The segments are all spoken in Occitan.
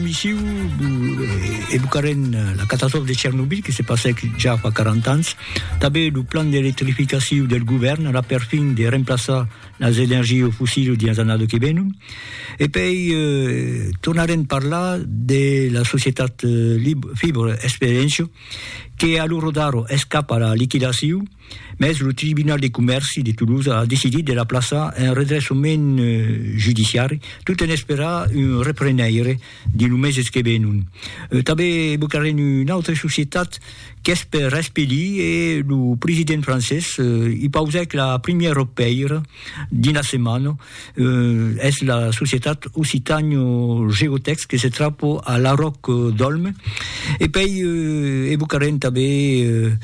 Missiu evocarem la catastròfa de Chernobyl que se passèc ja fa 40 ans. Tanben lo plan d'electrificaciu del govèrn a la perfin de remplaçar las energies fossils dins las annadas que venon. E pei eh, tornarem parlar de la societat Fibr Experiencio que a lo rodar escapa a la liquidaciu. Mès lo Tribunal de Comèrci de Toulouse a decidit de la plaçar en redreçament judiciari tot en esperar un reprenaire dins lo meses que venon. Tanben evocarem una autra societat qu'es per espelir e lo president francés i pausèc la primièra pèira dins la setmana es la societat Occitanio Geotex que se trapo a la Roc d'Olme e pei evocarem tanben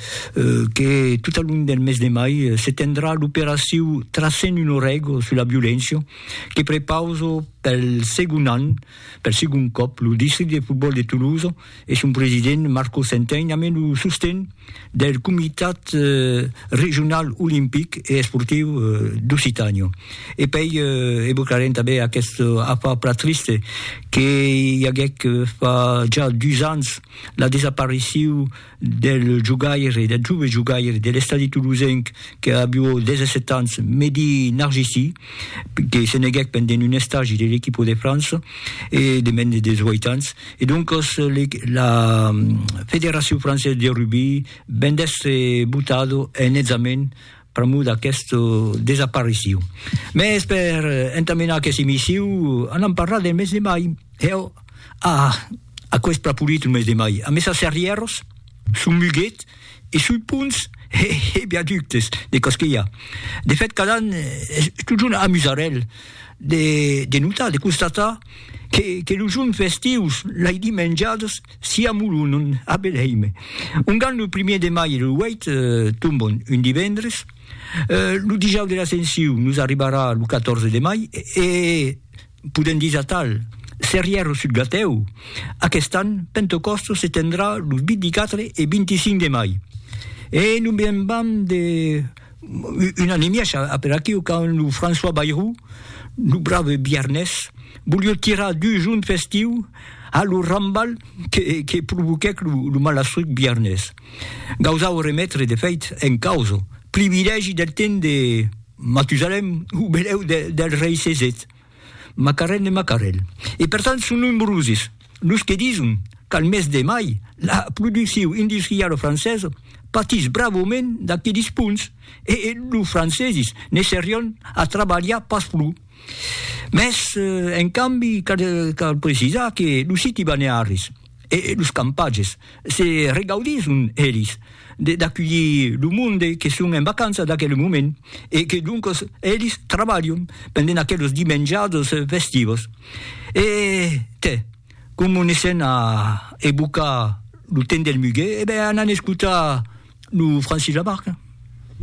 que tot al long del mes de mai se tendrà l'operacion Tracem un orego sus la violéncia que prepauso pel segon an, pel segon còp, lo districte de fotbòl de Tolosa. e son president Marco Centein amé lo sosten del Comitat Regional Olimpic e Esportiu d'Occitània. E pei evocarem tanben aqueth afar plan triste que i aguec fa ja dus ans la desaparicio del jogaire, del jove jogaire de l'Estadi Toulousenc que avió 17 ans, Mehdi Narjisi, que se neguèc pendent un estagi de l'equipo de França e de mens de 18 ans. E doncas la Federacion Française de Rugby ven d'èstre botado en hètzament pr'amor d'aquesta desaparicion. Mès per entamenar aquesta emission an a parlar del mes de mai. Heu, ah, aquò es pr'apolit lo mes de mai. Amessa serrièros? Son muguet e sui ponts e viaductes de Castèlha. De fèt, cada an es totjorn amusarèl de notar, de constatar que los jorns festius, lai dimenjadas, s'i amolonon a Belhèime. Ongan lo primièr de mai e lo 8 tombon un divendres, lo Dijòus de l'Ascensiu nos arribarà lo 14 de mai e, Podèm dire atal, Serrièr o sud Gatèu, aquest an, Pentecòstos se tendrà los 24 e 25 de mai. E non me'n vam de un an e mièg a per aquiu, quand lo François Bayrou, lo brave biarnés, volió tirar dus junts festiu a lo rambal que provoquèc lo malastruc biarnés. Gausau remetre, de fèit, en causa, privilègi del temps de. Matusalem, o belèu del rei Cesèt, Macarèl de Macarèl. E per tant son nombrosis los que dison qu'al mes de mai la produccion industriala francesa patís bravament d'aquelis ponts e los francesis ne serián a trabalhar pas pro. Mès en cambi cal precisar que los siti balnearis, e los campatges se regaudisson elis d'aculhir lo monde que son en vacança d'aquel moment e que doncos elis trabalhon pendent aquelos dimenjados festivos e te como ne sèn a evocar lo temps del muguet e ben anan escotar lo Francis Lamarque.